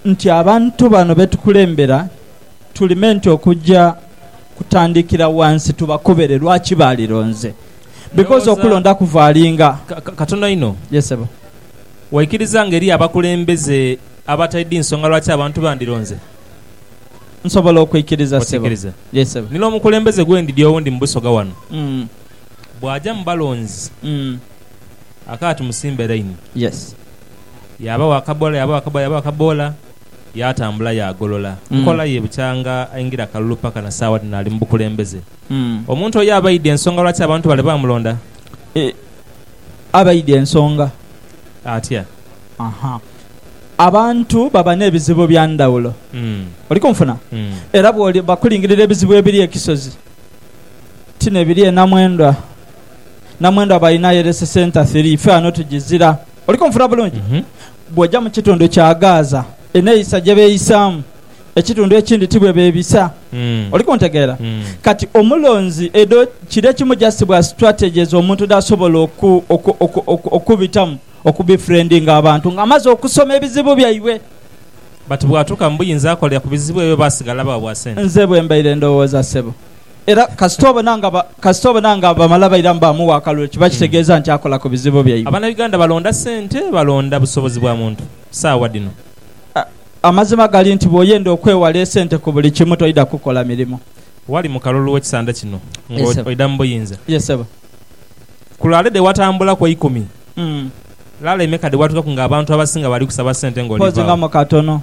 nti abantu bano be tukulembera tuli menti okugya kutandikira wansi tubakobere lwaki baalironze. Because okulonda kuvaalinga. Katono inho. Yes sebo. Waikiriza nga eriyo abakulembeze abataidhi nsonga lwaki abantu bandironze? Nsobola okwikiriza sebo. Okiikiriza? Yes sebo. Nina omukulembeze gwe ndidhi owundi mu Busoga wano. Bwagya mu balonzi. Akaati musimbe laini. Yes. Yaabagho akaboola, yaabagho akaboola, yaabagho akaboola, yaatambula yaagolola. Nkola ye bukyanga aingira kalulu paka na saawa dhino ali mu bukulembeze. Omuntu oyo abaidhi ensonga lwaki abantu bale baamulonda? Abaidhi ensonga. Atya? Aha. Abantu baba n'ebizibu bya ndhawulo. Oli kunfuna? Era bw'oli, bakulingirira ebizibu ebiri e Kisozi, ti n'ebiri e Namwendwa. Namwendwa aba ainayo eresesa entathiri, ife ghano tugizira. Oli kunfuna bulungi? Bw'oja mu kitundu kya Gaaza, eneeyisa gye beeyisaamu, ekitundu ekindi ti bwe beebisa. Oli kuntegeera? Kati, omulonzi, edho kiri ekimu just bwa strategies omuntu dh'asobola oku, oku, oku, oku, okubitamu, okubefriendinga abantu nga amaze okusoma ebizibu byaibwe. But bw'atuuka mu buyinza akolera ku bizibu ebyo oba asigala bwa bwa sente? Nze bwe mbaire ndowooza, ssebo. Era kasita obona nga ba, kasita obona nga bamala bairamu baamuwa akalulu, ekyo kiba kitegeeza nti akola ku bizibu byaibwe. Abana Uganda balonda sente, balonda busobozi bwa muntu saawa dhino. A, amazima gali nti bwoyenda okwewala esente ku buli kimu, toidha kukola mirimo. Wali mu kalulu w'ekisanda kino nga Yes sebo. oidha mu buyinza. Yes sebo. Ku laale dhe watambula ku eikumi, Mm. laale emeka dhe watuukaku nga abantu abasinga bali kusaba sente nga Mpoozi nga olivaagho? mu katono.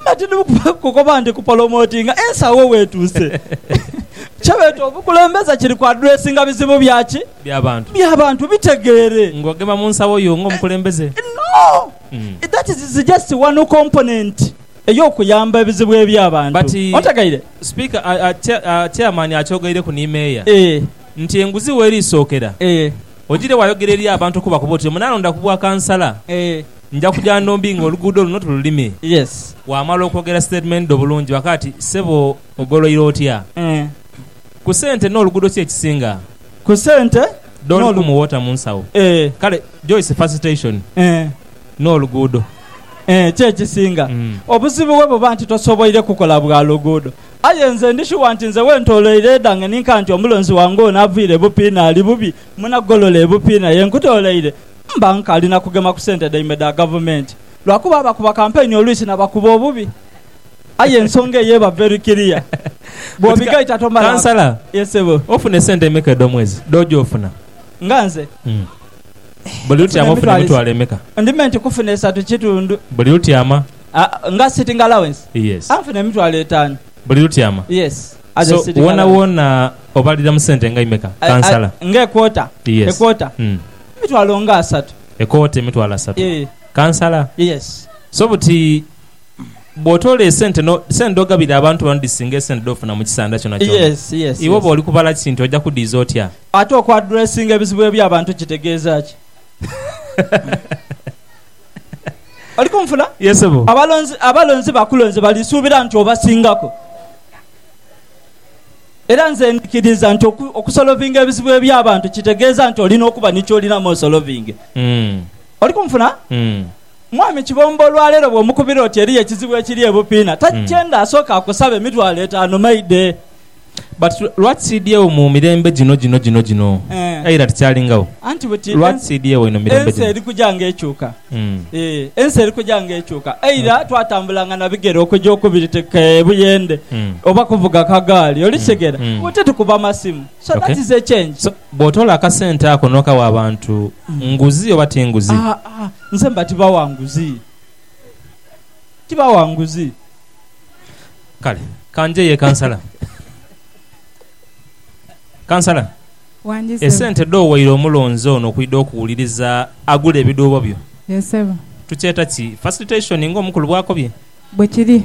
Mba tindi mu kukoba nti kupolomotinga ensagho wetuuse. Kye beeta obukulembeze kiri ku adressinga bizibu bya ki? Bya bantu. Bya bantu. Bitegeere. Nga ogema mu nsagho yo nga omukulembeze? No! That is just one component ey'okuyamba ebizibu ebya bantu. Ontegeire? But Speaker, Chairman akyogaireku ni Mayor nti enguzi werisookera, ogiire wayogera eri abantu okubakoba oti omunalonda ku bwa kansala, Nja kuja Ndombi nga oluguudo luno tululime. Yes. Waamala okwogera statement dho bulungi waka ati, Ssebo ogoloire otya? Ku sente n'oluguudo ki ekisinga? Ku sente Don n'olu. Kumu water mu nsawo. Eeh. Kale Joyce Facilitation Eeh. n'oluguudo. Eeh, ki ekisinga. Obuzibu bwe buba nti tosoboire kukola bwa luguudo. Aye nze ndi shuwa nti nze wentoloire edhange ni nkanti omulonzi wange ono avaire bupiina ali bubi, munagolola ebupiina ye nkutoleire. Mba nkali na kugema ku sente dhaimwe dha gavumenti lwa kuba abakuba kampeyini oluisi na bakuba obubi. Aye ensonga eyo eba very clear bw'obigaita tomala. Kansala, Ye Ssebo. Ofuna esente emeka edh'omwezi dh'oja ofuna? Nga nze? Buli lutyama ofuna emitwalo emeka? Ndi me nti kufuna esatu kitundu. Buli lutyama? Nga sitting allowance? Yes. Nfuna emitwalo etaanu. Buli lutyama? Yes. As a sitting allowance. So, woonawoona obalira mu sente nga imeka, Kansala? Nga equota? Yes. Equota? Emitwalo nga asatu. Ekooti emitwalo asatu. Yee. Kansala? Yes. So buti bw'otoola esente no, sente dh'ogabira abantu bano dhisinga esente dh'ofuna mu kisanda kyonakyona. Yes, yes, Iwe yes. bw'oli kubala kintu oja kudhiiza otya? Ate okwadressinga ebizibu eby'abantu kitegeeza ki? Oli kunfula? Yee, ssebo. Abalonzi, abalonzi bakulonze balisuubira nti obasingaku. Era nze ndhikiriza nti okusolovinga ebizibu eby'abantu kitegeeza nti oli n'okuba ni ky'olinamu osolovinge. Oli kunfuna? Mwami Kibombo olwaleero bw'omukubira oti eriyo ekizibu ekiri e Bupiina, takyenda asooke akusabe emitwalo etaanu maidhe. But lwaki siidhyegho mu mirembe gino gino gino gino? Aira tikyalingawo. Anti buti ensi eri kuja ng'ekyuka. Ensi eri kuja ng'ekyuka. Eira twatambulanga na bigere okuja okubiri teka ebuyende oba kuvuga kagaali. Oli kitegera? Mu ti tukuba masimu. So that is a change. So, bw'otoola akasente ako n'okawa abantu, nguzi oba ti nguzi? Aa, aa, nze mba tibawa nguzi. Tibawa nguzi. Kale, ka njeyo e Kansala. Kansala. Esente dhowaire omulonzi ono okwidha okuwuliriza agule ebidhuubo byo tukyeta ki facilitation ng'omukulu bw'akobye? Bwekiri.